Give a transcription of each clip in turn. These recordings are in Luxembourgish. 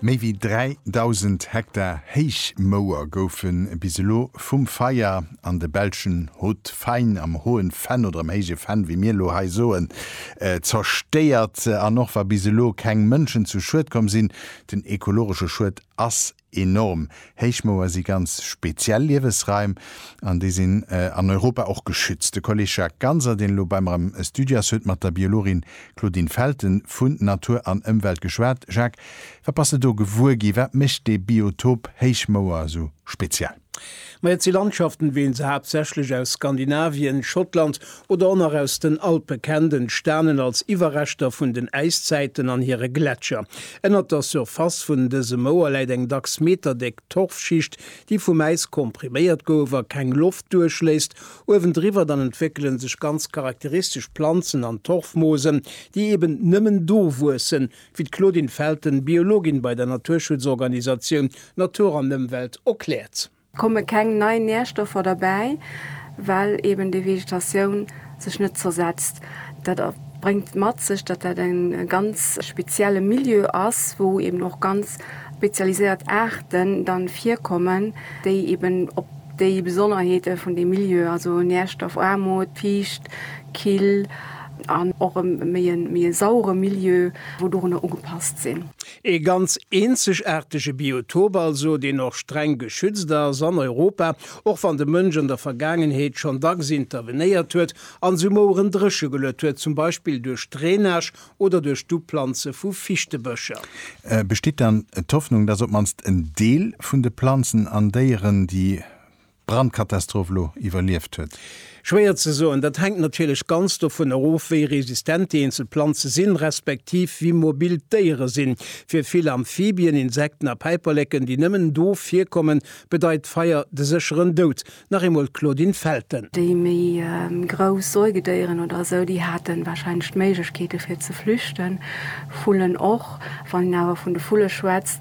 Méi wéi 3.000 Hektar Héichmouer goufe bis elo vum Feier an de belschen Haut-Fain, am Hohen Fenn oder am Héije Fenn, wéi mir elo hei soen, zerstéiert. An och wa bis elo keng Mënschen zu Schued komm sinn, den ekologesche Schued ass Enorm Héichmouer si ganz speziell Liewesraim an déi sinn an Europa och geschützt. De Kolleg Jacques Ganser, deen elo bei mer am Studio ass, huet mat der Biologin Claudine Felten vun Natur an Ëmwelt geschwat. Jacques, wat bass de do gewuer gi? Wat mécht dee Biotop Héichmouer esou speziell? Ma et si Landschaften, wéi een se haaptsächlech aus Skandinavien, Schottland oder och nach aus den Alpe kennt, entstanen als Iwwerreschter vun den Äiszäiten an hire Gletscher. Ënnert der Surface vun dëse Mouer läit eng dacks meterdéck Torfschicht, déi vum Äis kompriméiert gouf a keng Loft duerchléisst. Uewendriwwer dann entwéckele sech ganz charakteristesch Planzen an Torfmoosen, déi eben nëmmen do wuessen, wéi d'Claudine Felten, Biologin bei der Naturschutzorganisatioun Natur an Ëmwelt erkläert. Komme keng nei Närstoffer derbäi, well eben déi Vegetatioun sech net zersetzt. Dat bréngt mat sech, datt dat e ganz spezielle Milieu ass, wou eben och ganz spezialiséiert Aarten dann virkommen, déi eben op déi Besonnerheete vun deem Milieu, also Närstoffaarmut, fiicht, kill, An och e méi e sauere Milieu, wou dorunner ugepasst sinn. Ee ganz eenzegaartege Biotop also, deen och streng geschützt ass an Europa, och wann de Mënsch an der Vergaangenheet schonn dacks intervenéiert huet an sou Moueren dréche geluet huet, zum Beispill duerch Drainage oder duerch d'Uplanze vu Fichtebëscher. Besteet dann d'Hoffnung, dass op d'mannst en Deel vun de Planzen an Déieren, déi Brandkatastroph elo iwwerlieft huet? Schwéier ze soen. Dat hänkt natierlech ganz dovun erof, wéi resistent déi eenzel Planze sinn, respektiv wéi mobil d'Déiere sinn. Fir vill Amphibien, Insekten a Päiperleken, déi nëmmen do virkommen, bedeit Feier de sécheren Doud. Nach eemol d'Claudine Felten. Déi méi grouss Säugedéieren oder esou, déi haten wahrscheinlech d'Méiglechkeeten, fir ze flüchten. Vullen och. Wann een awer vun de Vulle schwätzt,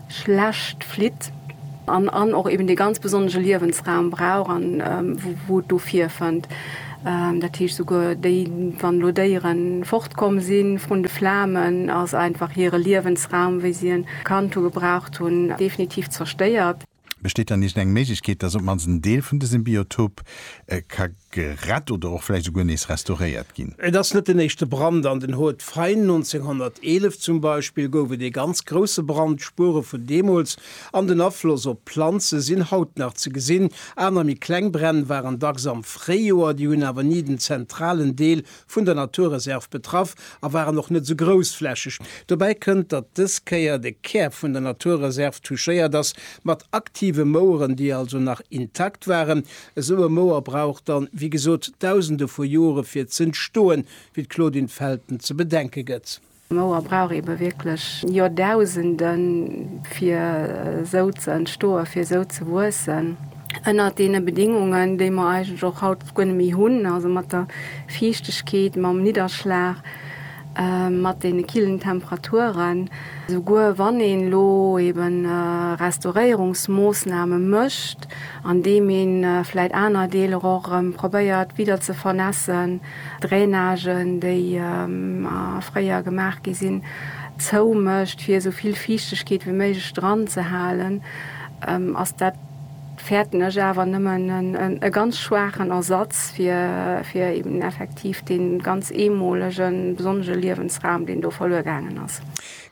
schlecht flitt an an och eben dee ganz besonnege Liewensraum brauch an wou et do virfënnt. Dat heescht souguer déi, wann elo Déiere fortkomm si vrun de Flamen, ass einfach hire Liewensraum, wéi si e kannt hu, gebraucht hunn, definitiv zerstéiert. Besteet dann iergend eng Méiglechkeet, dass op d'mannst en Deel vun dësem Biotop ka gerett oder och vläicht esouguer nees restauréiert ginn. Et ass net den éischte Brand an den Hautes Fagnes. 1911 zum Beispill gouf et ee ganz grousse Brand. D'Spuere vun deemools an den Afloss op d'Planze sinn haut nach ze gesinn. Aner méi kleng Bränn waren dacks am Fréijoer, déi hunn awer ni den zentralen Deel vun der Naturreserv betraff a waren och net esou groussflächeg. Dobäi kënnt, datt dës Kéier de Kär vun der Naturreserv touchéiert ass, mat aktive Moueren, déi also nach intakt waren. Esou e Mouer brauch dann, wéi gesot, Dausende vu Jore fir z'entstoen, wéi d'Claudine Felten ze bedenke gëtt. D'Mauer brauch eebe wierklech Joerdausenden, fir esou ze entstoen, fir esou ze wuessen. Ënnert deene Bedingungen, déi mer eigentlech och haut guer net méi hunn, also mat der Fiichtegkeet, mam Nidderschlag, mat deene killen Temperaturen, souguer wann een elo eebe Restauréierungsmoossname mécht, andeem ee vläicht aner Deeler och erëm probéiert widder ze vernässen, Drainagen, déi fréier gemaach gi sinn, zou mécht, fir esou vill Fiichtegkeet wéi méiglech dran ze halen, ass dat, fäerten ech awer, nëmmen e ganz schwaachen Ersatz fir eben effektiv dee ganz eemolege besonnege Liewensraum, deen do verluer gaangen ass.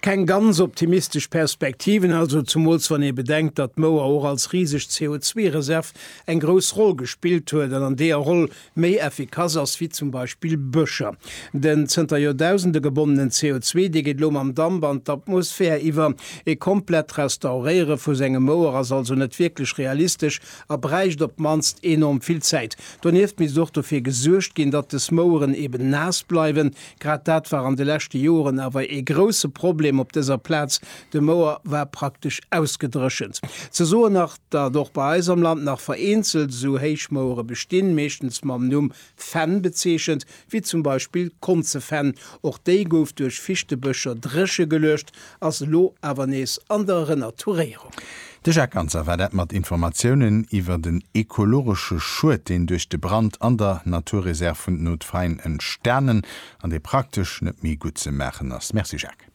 Keng ganz optimistesch Perspektiven also, zumools wann ee bedenkt, datt d'Mouer och als riseg CO2-Reserv eng grouss Roll gespillt huet an an deeër Roll méi effikass ass wéi zum Beispill Bëscher. Den zënter Joerdausende gebonnenen CO2, dee geet elo mam Damp an d'Atmosphär iwwer. E komplett Restauréiere vu sengem Mouer ass also net wierklech realistesch a bräicht op d'mannst enorm vill Zäit. Donieft misst och dofir gesuergt ginn, datt des Moueren eben naass bleiwen. Grad dat war an de leschte Joren awer ee grousse Problem op dëser Plaz, de Mouer war praktesch ausgedréchent. Ze soen nach. Datt och bei eis am Land nach vereenzelt esou Héichmouere bestinn, meeschtens mam Numm Fenn bezeechent, wéi zum Beispill Konzefenn, och déi gouf duerch Fichtebëscher dréche geluecht, ass elo awer nees an der Renaturéierung. De Jacques Ganser war dat mat Informatiounen iwwer den ekologesche Schued, deen duerch de Brand an der Naturreserv vun den Hauts-de-Faïnes entstanen an dee praktesch net méi gutt ze maachen ass. Merci Jacques.